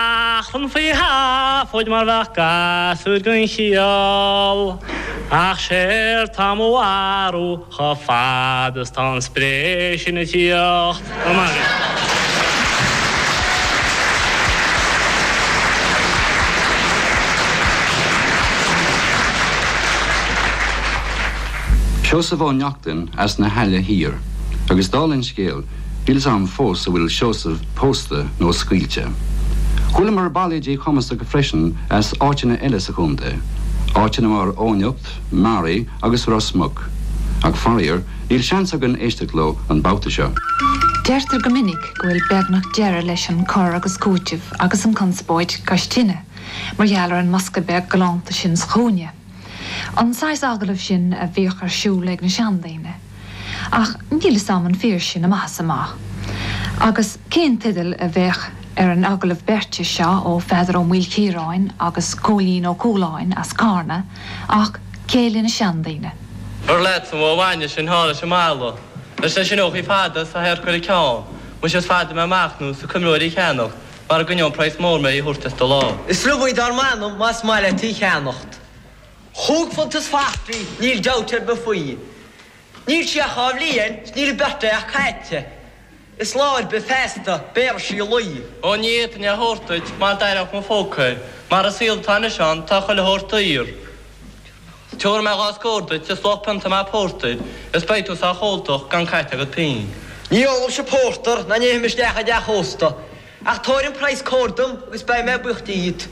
Ach an faoi sheafóid mar bheadh gasúir gan chiall Ach séard tá mo bharúil chomh fad is tá an spré sin ag tíocht Go maith. Seosamh Ó Neachtain as na hAille Thiar agus dála an scéil, Níl's 'am fós a bhfuil Seosamh pósta nó scaoilte. Chualamar bailéidí cumasacha freisin as áiteanna eile sa chontae, áiteanna mar Eoghanacht, Meáraí agus Ros Muc, ach faraor níl seans againn éisteacht leo an babhta seo. Deirtear go minic go bhfuil beagnach deireadh leis an cur agus cúiteamh agus an conspóid cois tine mar gheall ar an mbosca beag galánta sin sa chúinne. An saghas agallamh sin a bhíodh ar siúl ag na seandaoine. Ach níl 'fhios a'm an fíor sin amach is amach. Agus cén teideal a bheadh ar an agallamh beirte seo ó Pheadar Ó Maoilchiaráin agus Cóilín Ó Cualáin as Carna ach Céile na Seandaoine? An leatsa an bhó bhainne sin thall leis an mballa leis na sineachaí fada 's a hadharca ar a ceann, muise is fada mé ag machnamh 's ag cuimhniú í a cheannacht, Mara gcoinneodh an praghas mór mé í a thabhairt as do lámh. Is liom í dar m'anam más maith leat í cheannacht. Chúig phunt is dhá fhichead í, níl dabht ar bith faoi. Níl sí ach dhá bhliain 's níl a birthday ach caithte. Is lá ar bith feasta béarfaidh sí lao. Ó ní fhéadfainn é thabhairt duit mar d'aireodh mo phóca é. Mar an saol atá anois ann tá chuile shórt daor. Tiubharfaidh mé dhá scór duit is luach pionta maith pórtair, is beidh tú sách óltach gan caite agat pínn. Ní ólaimse pórtar ná ní théim isteach i dteach ósta, ach tabhair an praghas cóir dom agus beidh mé buíoch díot.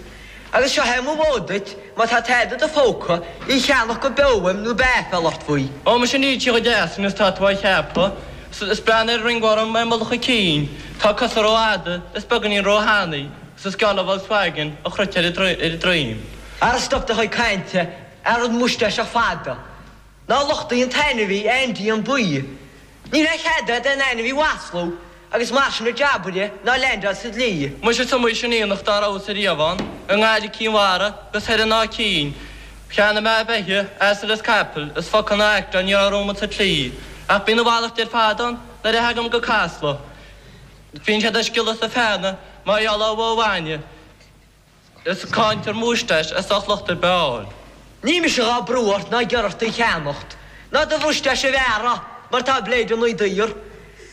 Agus seo é mo mhóid duit, má tá tada i do phóca, í cheannach go beo uaim nó beidh aiféal ort faoi. Ó, muise níl sí chomh deas sin is tá tú á cheapadh, is breathnaigh ar an ringworm ar mhullach a cinn, tá a cosa ró fhada, is beagáinín ró thanaí, is is geall le Volkswagen an chruit ar a droim. Ara stop do chuid cainte, a rud múistáiseach fada. Ná lochtaigh an t-ainmhí, Aindí, an baoi. Níl a chead a'd aon ainmhí a mhaslú agus mar sin a jabaire, ná leaindeáil sa dlí. Muise is iomaí sin aonach dá rabhas ariamh ann, i nGaillimh, Cinn Mhara 'gus thoir in Áth Cinn. Cheannaigh mé beithígh, asail is capaill, is focal ná aicteán ní raibh romhat sa tslí. Ach bíonn a mhalairt ar fad ann nuair a theagaim go Casla. Bíonn siad ag sciolladh is ag feannadh mar gheall ar bhó bhainne. Is cáintear múisteais as ucht locht ar bith a fháil. Níl mise dhá brú ort ná ag iarraidh ort í a cheannacht, ná do mhúisteais a bhearradh, mar tá blade inniu daor.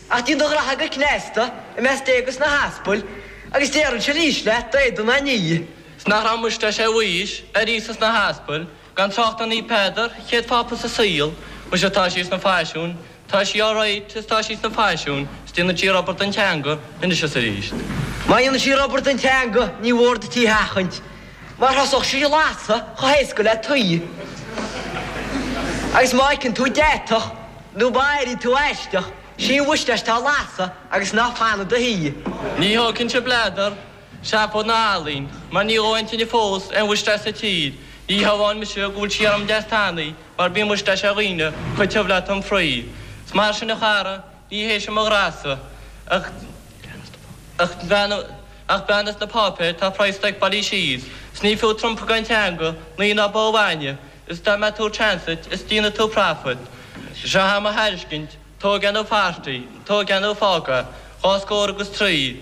Ach díon do ghraithe go cneasta, i measc Dé agus na hAspail, agus déarfainnse arís leat, d'éadan a ní. 's nach raibh múisteais ar Mhaois, ar Íosa 's na hAspail, Gan trácht ar Naomh Peadar, chéad Phápa sa saol, Muise atá sí sna faisiúin, tá sí alright is tá sí sna faisiúin, 's déanann sí rubber den teanga anois is arís. Má dhéanann sí rubber den teanga ní mór duit í a sheachaint mar thosódh sí ag lasadh chomh héasca le tuí agus má fheiceann tú deatach nó má airíonn tú aisteach, sín uait leis tá ag lasadh agus ná fan i do shuí. Ní thógfainn-se bladar. Seafóid ná ealaín mar níor dhóigh an tine fós aon mhuisteáis sa tír, ní hamháin mise go bhfuil sí orm deas tanaí mar bíonn muisteáis ar dhaoine chomh tiubh le tom fraoigh. 'S mar sin a chara, ní hé seo mo ghraithe-sa ach ach bean ach bean as na páipéir tá praghas stock bailithe síos, 's ní fiú trumpa gan teanga, lao ná bó bhainne, is dá mbeadh tú ag transit is déanfaidh tú profit. Seo í mo thairiscint, tóg é nó fart í, tóg é nó fág é, dhá scór agus trí.